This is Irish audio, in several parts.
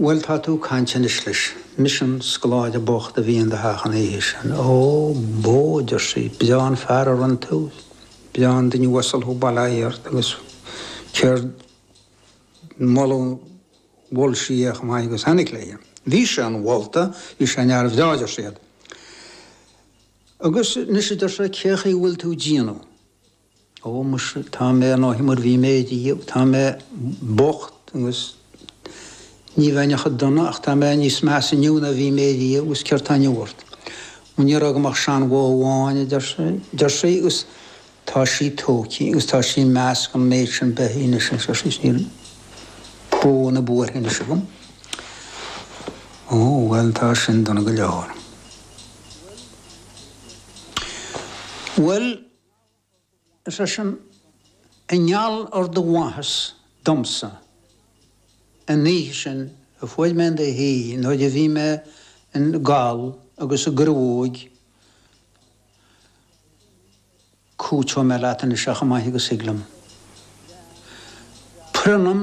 Bhuel, tá tú ag caint anois leis. Mise an scoláire bocht a bhí in do theach an oíche sin. Ó, bó, a deir sí, breá an fear a rinne tú, breá an duine uasal thú, bail ó Dhia ort, agus gan moladh mhol sí é chomh maith agus a tháinig léi. Bhí sé an-mholta, bhí sé ina fhear breá, a deir siad. Agus anois, a deir sé, cé chaoi a bhfuil tú ag déanamh? Ó muise, tá mé ar ndóigh mar bhí mé riamh, tá mé bocht agus ní bheinn chomh dona ach tá mé níos measa inniu ná bhí mé riamh agus céard tá inniu ort? Ó ní raibh agam ach seanbhó amháin, a deir sé, deir sí agus tá sí tógtha agus tá sí i measc an méid sin beithí anois a deir sí agus níl bó ná buarach anois agam. Ó bhuel tá sin dona go leor. Bhuel! Is é sin, i ngeall ar do mhaitheas domsa an oíche sin a fuair mé in do thigh nuair a bhí mé i ngeall agus i gcruóig, cúiteoidh mé leat anois chomh maith agus a thig liom. Pronnaim.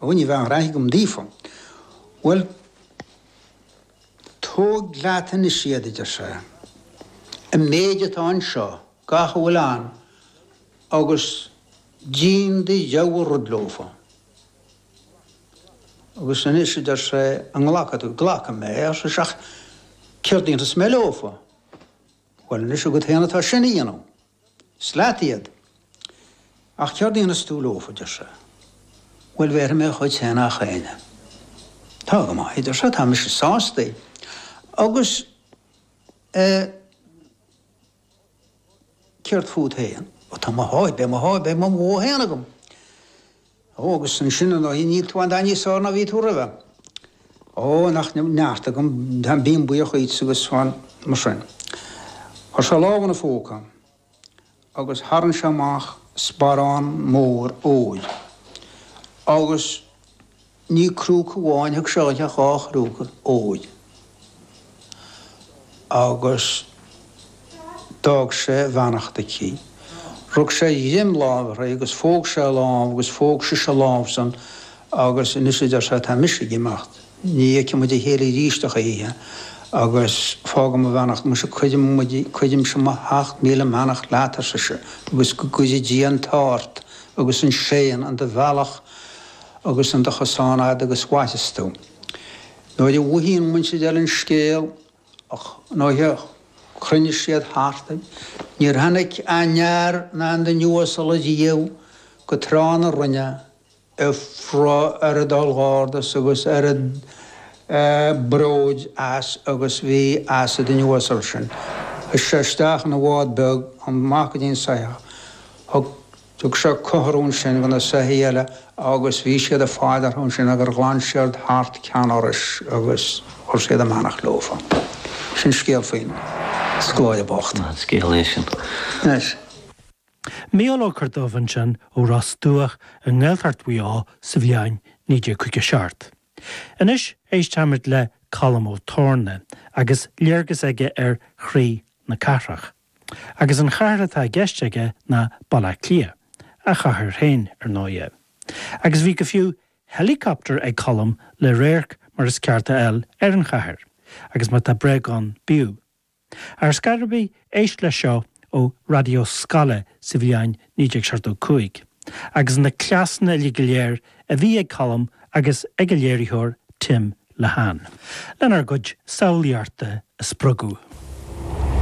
Ó ní bheidh aon rath agam daofa. Bhuel, tóg leat anois iad, a deir sé. An méid atá anseo, gach a bhfuil ann, agus déan do rogha rud leofa. Agus anois, a deir sé, an nglacfaidh tú? Glacfaidh mé, ar sise, ach céard a dhéanfas mé leofa? Bhuel, anois agat féin atá sin a dhéanamh. Is leat iad. Ach céard a dhéanfas tú leofa, deir sé. Bhuel, bhéarfaidh mé a chuid féin do chuile dhuine. Tá go maith, deir sé, tá mise sástaí. Agus eh céard fút féin? Ó tá mo sháith, beidh mo sháith, beidh mo bhó féin agam. Ó, agus ansin, ar ndóigh, níl tú a dhath níos fearr ná bhí tú roimhe. Ó, nach neart agam, táim, bím buíoch dhuitse agus fan mar sin. Chuir sé a lámh ina phóca agus tharraing sé amach sparán mór óir. Agus ní crúca amháin a thug sé di ach dhá chrúca óir. agus d'fhág sé a bheannacht aici. Rug sé greim láimhe uirthi agus phóg sé a lámh agus phóg sise a lámh-san agus anois a deir sé tá mise ag imeacht, ní fheicfidh muid a chéile arís a choíche agus fágaim mo bheannacht, muise cuirim muid, cuirimse mo sheacht míle mbeannacht leat, ar sise, agus go gcuire Dia an t-ádh ort agus an séan in do bhealach agus in do chosán fhad agus mhairfeas tú. Nuair a mhothaíonn muintir an oileáin scéal a ghnóithe chruinnigh siad thart. Níor tháinig aon fhear ná aon duine uasal riamh go Trá na Rinne a fuair oiread ollghairdeas agus oiread bróid as agus a bhí as an duine uasal sin. Thug sé isteach ina bhád beag an mac go dtí an soitheach. Thug. Thug sé cothrom sin go na soithí eile agus bhí siad ag faire orthu ansin agur ghlan siad thart ceann ar ais agus chuir siad a mbeannacht leofa. Sin scéal faoin scoláire bocht. An scéal é sin. Anois. Micheál Corduibh ansin ó Ros Dumhach i nGaeltacht Mhaigh Eo sa bhliain 1957. Anois éisteamid le Colm Ó Torna agus léargas aige ar chroí na cathrach. agus an chathair atá i gceist aige ná Baile Átha Cliath, a chathair féin, ar ndóighe, agus bhí go fiú helicopter ag Colm le radharc mar is ceart a fháil ar an chathair, agus má tá bréag ann bíodh. Ar scor ar bith, éist leis seo ó Raidió Scoile sa bhliain 1975, agus na cleasanna uilig go léir a bhí ag Colm agus ag a léiritheoir Tim Lehane. lenár gcuid samhlaíochta a spreagadh.